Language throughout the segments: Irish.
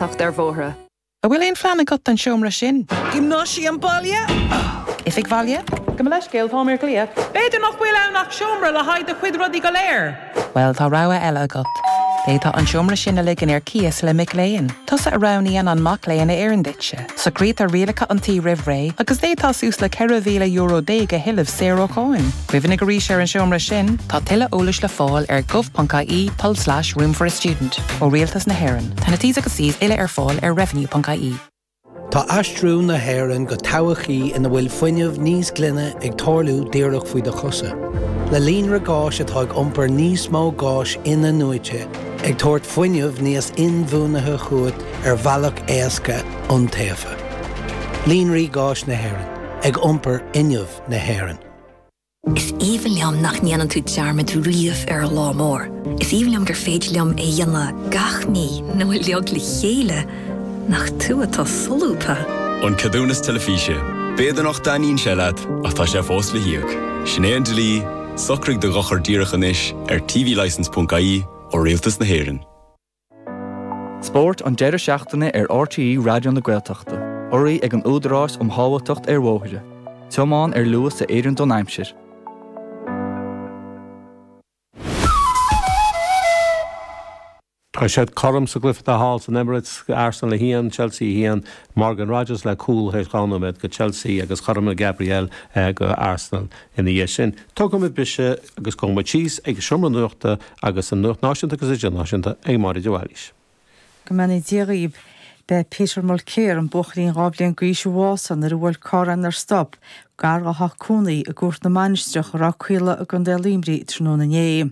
An bhfuil aon phlean agat don seomra sin? Giomnáisiam Bhaile. Oifig Bhaile. Gabh mo leithscéal, táim ar glaoch. B'fhéidir nach bhfuil ann ach seomra le haghaidh do chuid rudaí go léir. Bhuel, tá rogha eile agat. D'fhéadfá an seomra sin a ligean ar cíos le mac léinn. Tusa a roghnaíonn an mac léinn a oireann duitse. Socraítear rialacha an tí roimh ré agus d'fhéadfá suas le ceithre mhíle euro déag a thuilleamh saor ó cháin. Cuimhnigh arís ar an seomra sin! Tá tuilleadh eolais le fáil ar gov.ie tulslais room for a student ó Rialtas na hÉireann. Tá na T's agus C's uile ar fáil ar revenue.ie. Tá aistriú na hÉireann go todhchaí ina bhfuil fuinneamh níos glaine ag tarlú díreach faoi do chosa. Le líonra gáis atá ag iompar níos mó gáis in-athnuaite, ag tabhairt fuinneamh níos inbhuanaithe chugat, ar bhealach éasca iontaofa. Líonraí Gáis na hÉireann, ag iompar fuinneamh na hÉireann. Is aoibhinn liom nach ndéanann tú dearmad riamh ar an lá mór. Is aoibhinn liom gur féidir liom é a dhéanamh gach mí nó uilig le chéile, nach tú atá solúbtha! An Ceadúnas Teilifíse, B'fhéidir nach dtaitníonn sé leat ach tá sé fós le híoc. Sin é an dlí, socraigh do dhochar díreach anois ar tvlicense.ie ó Rialtas na hÉireann. Spórt an deireadh seachtaine ar RTÉ Raidió na Gaeltachta. Urraithe ag an Údarás um Shábháilteacht ar Bhóithre. Tiomáin ar luas a oireann don aimsir. Tá siad cothrom sa gcluiche atá thall san Emirates, Arsenal 1, Chelsea 1. Morgan Rogers le cúl tar éis dhá nóiméad do Chelsea agus chothromaigh Gabriel do Arsenal ina dhiaidh sin. Tógfaimid briseadh agus gabhaimid síos ag an seomra nuachta Agus an Nuacht Náisiúnta agus Idirnáisiúnta ag Máire de Bhailís. Go mbeannaí Dia dhaoib. B'é Peter Mulcair, an buachaillín dhá bhliain d'aois a bhásaigh nuair a bhuail carr é nár stop gar dhá theach cónaí i gCúirt na Mainistreach i Ráth Caola i gContae Luimnigh tráthnóna inné.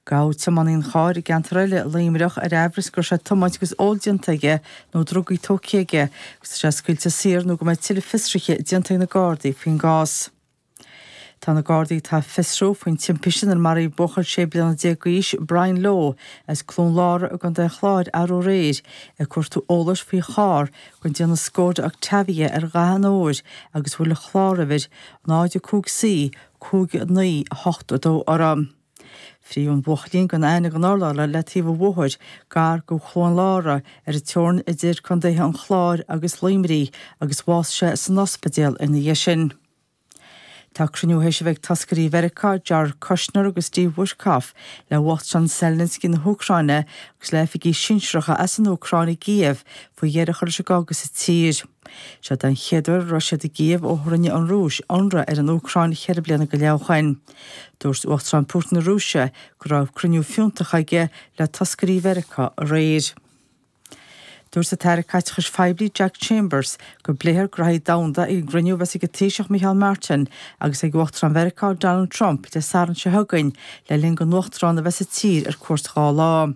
Gabhadh tiománaí an chairr i gceantar eile i Luimneach ar aimhreas go raibh sé ag tiomáint agus ól déanta aige nó drugaí tógtha aige agus tá sé scaoilte saor nó go mbeidh tuilleadh fiosruithe déanta ag na Gardaí faoin gcás. Tá na Gardaí atá ag fiosrú faoin timpiste inar maraíodh buachaill 16 bliana d'aois, Brian Lowe, as Cluain Lára i gContae an Chláir arú aréir, ag cuartú eolais faoi charr den déanamh Skoda Octavia ar Dhath an Óir agus a bhfuil an chláruimhir 05C 5982 uirthi. Fritheadh an buachaillín gan aithne gan urlabhra le taobh an bhóthair gar do Chluain Lára ar an teorainn idir Contaetha an Chláir agus Luimnigh agus bhásaigh sé san ospidéal ina dhiaidh sin. Tá cruinniú théis a bheith ag toscairí Mheiriceá, Jared Kushner agus Steve Witkoff, le huachtarán Zelensky na hÚcráine agus le oifigigh sinsearacha as an Úcráin i gCív faoi dheireadh a chur leis an gcogadh sa tír. Seo den chéad uair a raibh siad i gCív ó rinne an Rúis ionradh ar an Úcráin ceithre bliana go leith ó shin. Dúirt Uachtarán Putin na Rúise go raibh cruinniú fiúntach aige le toscairí Mheiriceá aréir. Dúirt an tAire Caiteachais Phoiblí Jack Chambers go bpléifear graithí domhanda ag an gcruinniú a bheas ag an Taoiseach Micheál Martin agus ag Uachtarán Mheiriceá Donald Trump Dé Sathairn seo chugainn le linn don Uachtarán a bheith sa tír ar cuairt dhá lá.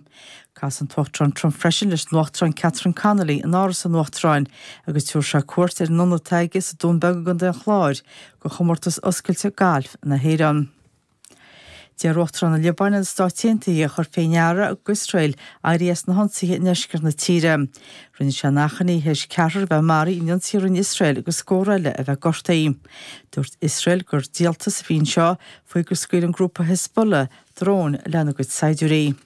Casfaidh an tUachtarán Trump freisin leis an Uachtarán Catherine Connolly in Áras an Uachtaráin agus tabharfaidh sé cuairt ar an ionad atá aige sa Dún Beag i gContae an Chláir do chomórtas oscailte gailf na hÉireann. D'iarr Uachtarán na Liobáine ar na Stáit Aontaithe a chur faoi ndeara go Iosrael éirí as na hionsaithe i ndeisceart na tíre. Rinne sé an achainí théis ceathrar a bheith maraithe in ionsaí a rinne Iosrael agus scór eile a bheith gortaithe. Dúirt Iosrael gur díoltas a bhí anseo faoi gur scaoil an grúpa Hezbollah dróin lena gcuid saighdiúirí.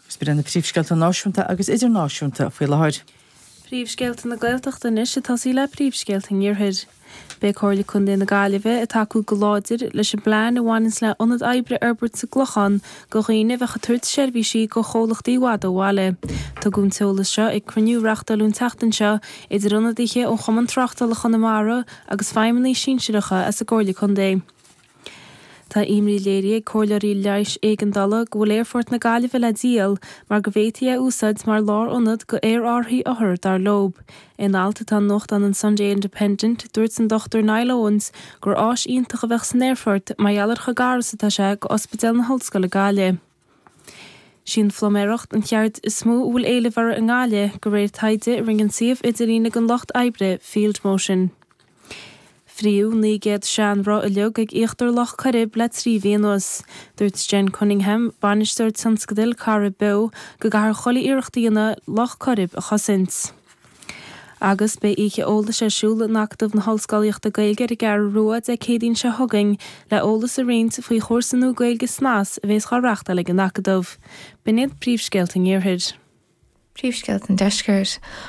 Agus b'in iad na Príomhscéalta Náisiúnta agus Idirnáisiúnta faoi láthair. Príomhscéalta na Gaeltachta Anois ag tosaí le príomhscéalta an Iarthair. Beidh Comhairle Chontae na Gaillimhe ag tacú go láidir leis an bplean a bhaineanns le ionad oibre a fhorbairt sa gClochán go dhaoine a bheadh ag tabhairt seirbhísí go chomhlachtaí i bhfad ó bhaile. Tugadh an t-eolas seo ag cruinniú a reachtáileadh an tseachtain seo idir ionadaithe ó Chumann Tráchtála Chonamara agus feidhmeannaigh sinsearacha as an gComhairle Contae. Tá imní léirithe ag comhairleoirí leighis éigeandála go bhfuil Aerfort na Gaillimhe le díol mar go bhféadfaí é a úsáid mar lárionad go aerárthaí othar, dar leo. In alt atá i nuachtán an Sunday Independent, dúirt an Dr Niall Owens gur áis iontach a bheadh san aerfort mar gheall ar chomh gar is atá sé go Ospidéal na hOllscoile Gaillimh. Sí an phluiméireacht an cheird is mó a bhfuil éileamh uirthi i nGaillimh, go réir taighde a rinne an suíomh idirlín ag an lucht oibre Field Motion. Fríothadh 900 seanroth uilig ag íochtar Loch Coirib le trí mhí anuas. Dúirt Jen Cunningham, bainisteoir tionscadail Corrib Beo, go gcaithfear chuile iarracht a dhéanamh Loch Coirib a chosaint. Agus beidh oíche eolais ar siúl in Acadamh na hOllscolaíochta Gaeilge ar an gCeathrú Rua Dé Céadaoin seo chugainn le eolas a roinnt faoi chúrsa nua Gaeilge Snas a bhéas á reachtáil ag an Acadamh. B'in iad príomhscéalta an Iarthair. Príomhscéalta an Deiscirt.